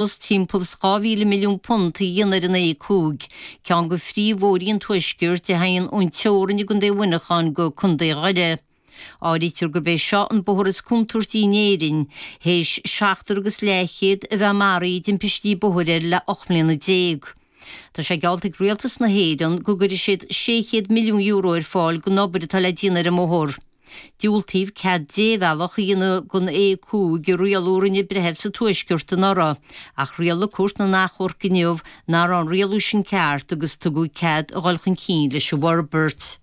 Is timpeall is dhá mhíle milliún punt a dhéanamh ar an A5, ceann go phríomhbhóithrí an tuaiscirt, a theigheann ón teorainn i gContae Mhuineacháin go Contae Dhoire. Áirítear gurb é seo an bóthar is contúirtí in Éirinn, théis seachtar agus leathchéad a bheith maraithe i dtimpistí bóthair air le ocht mbliana déag. Tá sé geallta ag Rialtas na hÉireann go gcuirfidh siad €600 milliún ar fáil don obair atá le déanamh ar an mbóthar. Diúltaíodh cead débhealach a dhéanamh don A5 i rialú a rinne breitheamh sa Tuaisceart anuraidh, ach rialaigh Cúirt na nAchomharc inniu nach raibh an rialú sin ceart agus tugadh cead a dhul chun cinn leis an bhforbairt.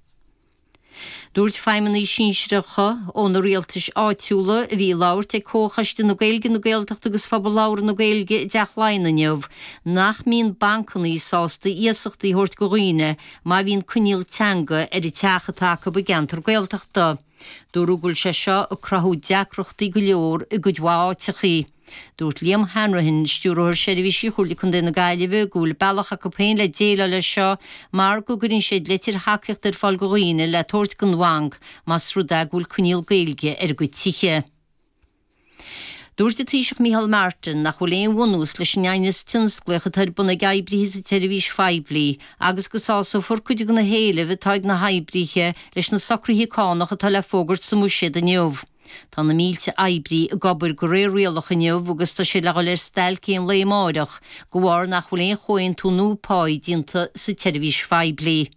Dúirt feidhmeannaigh sinsearacha ó na rialtais áitiúla a bhí ag labhairt ag Comhchoiste na Gaeilge, na Gaeltachta agus Phobal Labhartha na Gaeilge i dTeach Laighean inniu nach mbíonn bancannaí sásta iasachtaí a thabhairt go dhaoine má bhíonn coinníoll teanga ar an teach atá acu i gceantar Gaeltachta. Dúradh go bhfuil sé seo ag cruthú deacrachtaí go leor i gcuid mhaith áiteachaí. Dúirt Liam Hanrahan, Stiúrthóir Seirbhísí Chomhairle Contae na Gaillimhe, go bhfuil bealach acu féin le déileáil leis seo mar go gcuireann siad leitir thacaíochta ar fáil go dhaoine le tabhairt don bhanc más rud é go bhfuil coinníoll Gaeilge ar a gcuid tithe. Dúirt an Taoiseach Micheál Martin nach bhfuil aon bhunús leis an aighneas tionsclaíoch atá ar bun ag oibrithe sa tseirbhís phoiblí agus go sásófar cuid de na héilimh atá ag na hoibrithe leis na socruithe cánach atá le fógairt sa mBuiséad inniu. Tá na mílte oibrí ag obair go réir rialach inniu agus tá siad le dhul ar stailc aon lae amáireach de bharr nach bhfuil aon chomhaontú nua páí déanta sa tseirbhís phoiblí.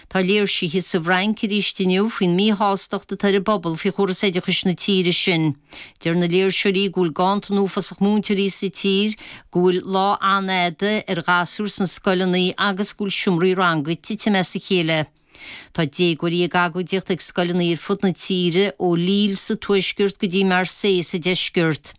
Tá léirsithe sa bhFrainc arís inniu faoin míshástacht atá ar an bpobal faoi chóras oideachais na tíre sin. Deir na léirseoirí go bhfuil ganntan uafásach múinteoirí sa tír, go bhfuil lá an-fhada ar ghasúir sna scoileanna agus go bhfuil seomraí ranga ag titim as a chéile. Tá déagóirí ag agóidíocht ag scoileanna ar fud na tíre, ó Lille sa tuaisceart go dtí Marseille sa deisceart.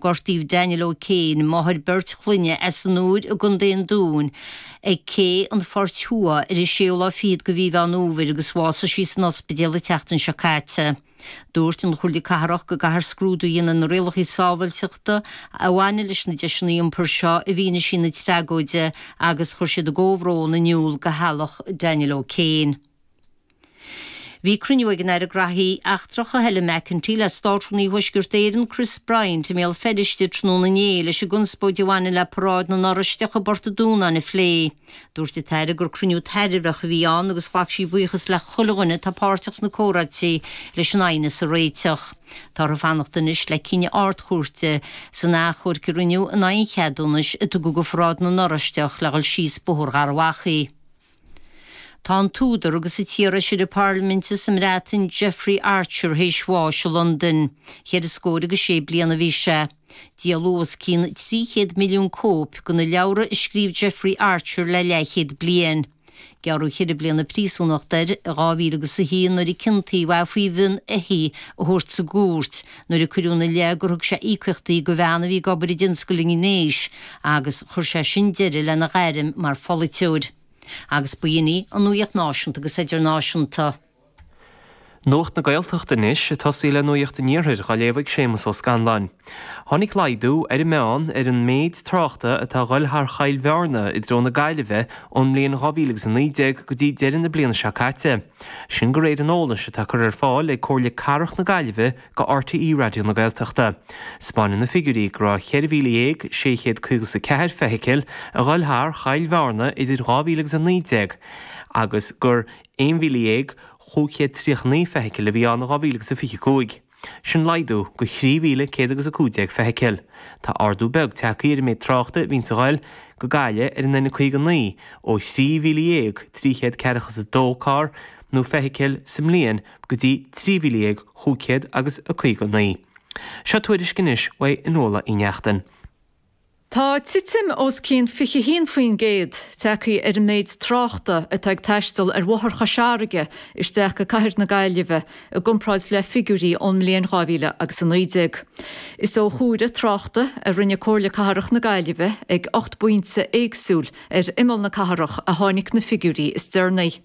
Gortaíodh Danielle O'Kane, máthair beirt chlainne, as an Iúir i gContae an Dúin ag Cé an Phoirt Thuaidh ar an 6ú lá fichead de mhí Mheán Fhómhair agus bhásaigh sí san ospidéal an tseachtain seo caite. Dúirt an Chomhairle Cathrach go gcaithfear scrúdú a dhéanamh ar na rialacha sábháilteachta a bhaineann leis na deiseanna iompair seo i bhfianaise na tragóide agus chuir siad a gcomhbhrón in iúl go theaghlach Danielle O'Kane. Bhí cruinniú ag an Aire Graithí Eachtracha, Helen McEntee, le Státrúnaí Thuaisceart Éireann, Chris Bryant, i mBéal Feirste tráthnóna inné leis an gconspóid a bhaineann le paráid na nOráisteach i bPort a' Dúnáin a phlé. Dúirt an tAire gur cruinniú tairbheach a bhí ann agus ghlac sí buíochas le chuile dhuine atá páirteach sna comhráití leis an aighneas a réiteach. Tá orthu fanacht anois le cinneadh Ard-Chúirte san achomharc a rinneadh in aghaidh an cheadúnais a tugadh do pharáid na nOráisteach le dhul síos Bóthar Gharbhachaidh. Tá an t-údar agus an t-iarfheisire Parlaiminte sa mBreatain, Jeffrey Archer, théis bháis i Londain. Cheithre scór agus sé bliain a bhí sé. Díoladh os cionn 300 milliún cóip de na leabhra a scríobh Jeffrey Archer le leathchéad bliain. Gearradh ceithre bliana príosúnachta air i 2001 nuair a ciontaíodh é faoi mhionn éithigh a thabhairt sa gcúirt, nuair a cuireadh ina leith gur thug sé íocaíochtaí do bhean a bhí ag obair i dtionscal an ghnéis agus chuir sé sin deireadh lena ghairm mar pholaiteoir. Agus ba shin í an nuaíocht náisiúnta agus idirnáisiúnta. Nuacht na Gaeltachta anois ag tosaí le nuaíocht an iarthair dá léamh ag Séamus Ó Scanláin. Tháinig laghdú, ar an meán, ar an méid tráchta atá ag goil thar Choill Bhearna i dtreo na Gaillimhe ón mbliain 2019 go dtí deireadh na bliana seo caite. sin go réir an eolais atá curtha ar fáil ag Comhairle Cathrach na Gaillimhe go RTÉ Raidió na Gaeltachta. 'Spáineann na figiúirí go raibh 14,654 feithicil ag goil thar Choill Bhearna in 2000 agus 19 agus gur 11,539 feithicil a bhí ann in 2025. Sin laghdú go 3,115 feithicil. Tá ardú beag tagthaí ar an méid tráchta a bhíonn ag goil go Gaillimh ar an N59 ó 13,342 carr nó feithicil sa mbliain go dtí 13,559. Seo tuairisc anois ó Fhionnuala Uí Neachtain. Tá titim os cionn 21% tagtha ar an méid tráchta atá ag taisteal ar Bhóthar Chois Fharraige isteach go cathair na Gaillimhe i gcomparáid le figiúirí ón mbliain 2000 agus 19. Is ó chomhaireamh tráchta a rinne Comhairle Cathrach na Gaillimhe ag ocht bpointe éagsúil ar imeall na cathrach a tháinig na figiúirí is deireanaí.